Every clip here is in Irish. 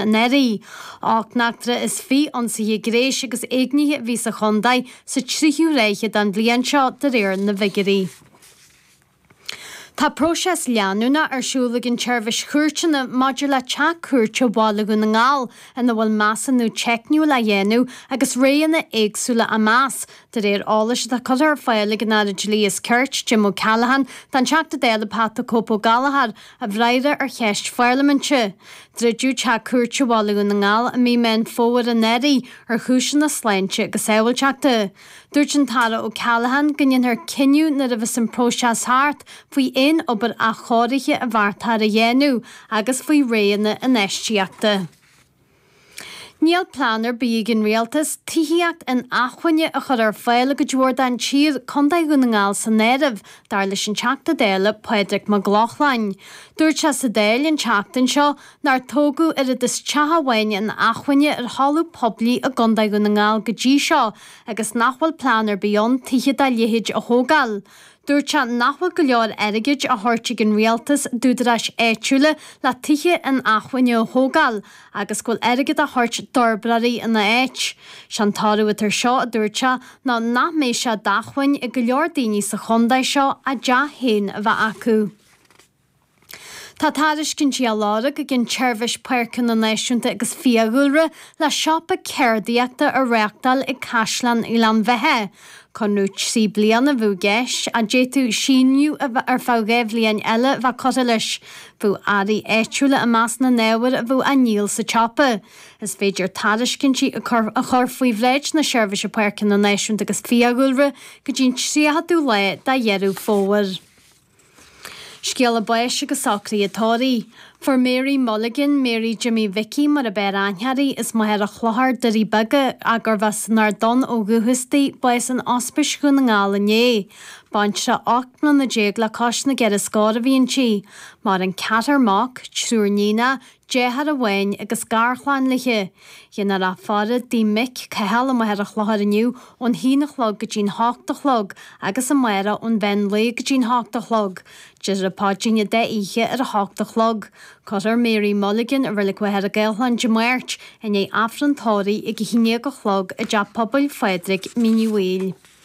an Airí. Ocht n-eachtra is fiche ionsaithe gréis agus éignithe a bhí sa chontae sa tríú ráithe den bhliain seo de réir na bhfigiúirí. Tá próiseas leanúnach ar siúl ag an tSeirbhís Chúirteanna maidir le Teach Cúirte Bhaile Dhún na nGall ina bhfuil measúnú teicniúil á dhéanamh agus roghanna éagsúla á meas, de réir eolais atá curtha ar fáil ag an Aire Dlí is Cirt, Jim O'Callaghan, don Teachta Dála Pat 'The Cope' Ó Gallachóir. i bhfreagra ar cheist pharlaiminte. Druideadh Teach Cúirte Bhaile Dhún na nGall i mí Mheán Fómhair anuraidh ar chúiseanna sláinte agus sábháilteachta. Dúirt an tAire O'Callaghan go ndéanfar cinneadh nuair a bheas an próiseas thart faoi aon obair athchóirithe a bheartaítear a dhéanamh agus faoi roghanna infheistíochta. Níl plean ar bith ag an Rialtas tithíocht inacmhainne a chur ar fáil i gcuid mhór den tír, Contae Dhún na nGall san áireamh, dar leis an Teachta Dála Pádraig Mac Lochlainn. Dúirt sé sa Dáil an tseachtain seo nár tógadh oiread is teach amháin inacmhainne ar thalamh poiblí i gContae Dhún na nGall go dtí seo agus nach bhfuil plean ar bith ann tithe dá leithéid a thógáil. Dúirt sé nach bhfuil go leor airgid á thabhairt ag an Rialtas d'údaráis áitiúla le tithe inacmhainne a thógáil agus go bhfuil airgead á thabhairt d'fhorbróirí ina áit. Sé an toradh atá ar seo, a dúirt sé, ná nach mbeidh sé d'acmhainn ag go leor daoine sa Chontae seo a dteach féin a bheith acu. Tá tairiscintí á lorg ag an tSeirbhís Páirceanna Náisiúnta agus Fiadhúlra le siopa ceardaíochta a reáchtáil ag Caisleán Ghleann Bheithe. Conradh trí bliana a bheadh i gceist, a d'fhéadfadh síneadh ar feadh dhá bhliain eile a bheith curtha leis. Bheadh earraí áitiúla i measc na n-ábhar a bheadh á ndíol sa tsiopa. Is féidir tairiscintí a chur faoi bhráid na Seirbhíse Páirceanna Náisiúnta agus Fiadhúlra go dtí an 30ú lá de Dheireadh Fómhair. Scéala báis agus socraithe tórraimh. Fuair Mary Mulligan, Mary Jimmy Mhicí mar ab fhearr aithne uirthi, as Machaire Chlochair, Doirí Beaga, a gurbh as an Ard Donn ó dhúchas di, bás in Ospís Dhún na nGall inné. Baintreach ocht mbliana déag le cois na gceithre scór a bhí inti. Maireann ceathrar mac, triúr níonach, Deartháir amháin agus garchlann léi. Dhéanfar a faire i dtigh a mic Cathal i Machaire Chlochair inniu ón h-aon a chlog go dtí'n h-ocht a chlog agus amárach ón mheán lae go dtí'n h-ocht a chlog. Déarfar an Paidrín an dá oíche ar a h-ocht a chlog. Cuirfear Mary Mulligan i Reilig Mhachaire Gathlán Dé Máirt, i ndiaidh Aifreann tórraimh ag a h-aon déag a chlog i dTeach Pobail Phádraig Mín Uí Bhaoill.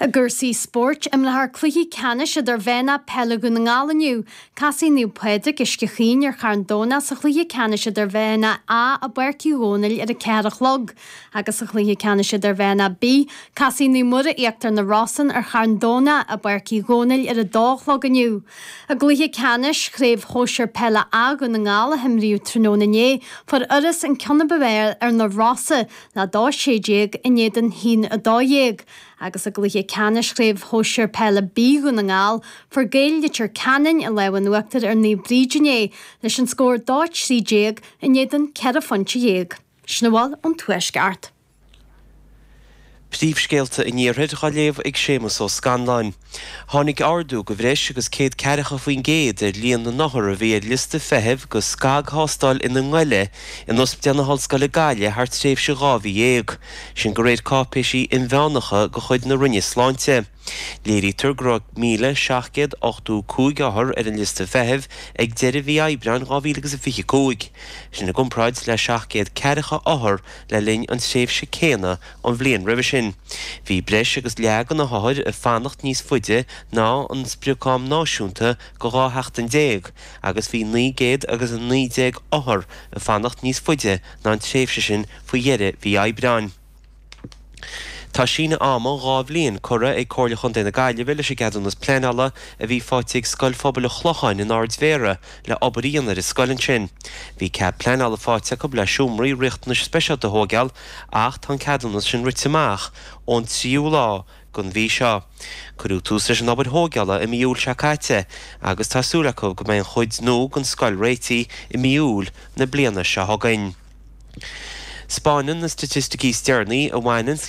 I gcúrsaí spóirt, imreofar cluichí ceannais Idirmheánach Peile Dhún na nGall inniu. Casfaidh Naomh Pádraig, Uisce Chaoin ar Charn Domhnach sa chluiche ceannais Idirmheánach A i bPáirc Uí Dhónaill ar a ceathair a chlog agus sa chluiche ceannais Idirmheánach B casfaidh Naomh Muire, Íochtar na Rosann ar Charn Domhnach i bPáirc Uí Dhónaill ar a dó a chlog inniu. I gcluiche ceannais Chraobh Shóisir Peile A Dhún na nGall a himríodh tráthnóna inné, fuair Iorras an ceann ab fhearr ar Na Rosa, 2-16 in éadan a haon a dó dhéag agus i gcluiche ceannais Chraobh Shóisir Peile B Dhún na nGall, fuair Gaeil Leitir Ceanainn an lámh in uachtar ar Naomh Bríd inné leis an scór 2-13 in éadan 14 phointe. Sin a bhfuil ón Tuaisceart. Príomhscéalta an Iarthair dá léamh ag Séamus Ó Scanláin. Tháinig ardú de bhreis agus céad ceathracha faoin gcéad ar líon na n-othar a bhí ar liosta feithimh do scagthástáil ionaghoile in Ospidéal na hOllscoile Gaillimh thar tréimhse dhá mhí dhéag, sin de réir cáipéisí inmheánacha de chuid na Roinne Sláinte. Léirítear go raibh 1,785 othar ar an liosta feithimh ag deireadh mhí Aibreáin 2025, sin i gcomparáid le 700 ceathracha othar le linn an tréimhse céanna an bhliain roimhe sin. Bhí breis agus leath de na hothair ag fanacht níos faide ná an sprioc-am náisiúnta de 12 sheachtain agus bhí naoi gcéad agus a naoi déag othar ag fanacht níos faide ná an tréimhse sin faoi dheireadh mhí Aibreáin. Tá síneadh ama dhá bhliain curtha ag Comhairle Chontae na Gaillimhe leis an gceadúnas pleanála a bhí faighte ag Scoil Phobail an Chlocháin in Ard Mhéara le obair a dhéanamh ar an scoil ansin. Bhí cead pleanála faighte acu le seomraí riachtanais speisialta a thógáil ach tá an ceadúnas sin rite amach ón 3ú lá den mhí seo. Cuireadh tús leis an obair thógála i mí Iúil seo caite agus tá súil acu go mbeidh an chuid nua den scoil réitithe i mí Iúil na bliana seo chugainn. 'Spáineann na staitisticí is deireanaí a bhaineann le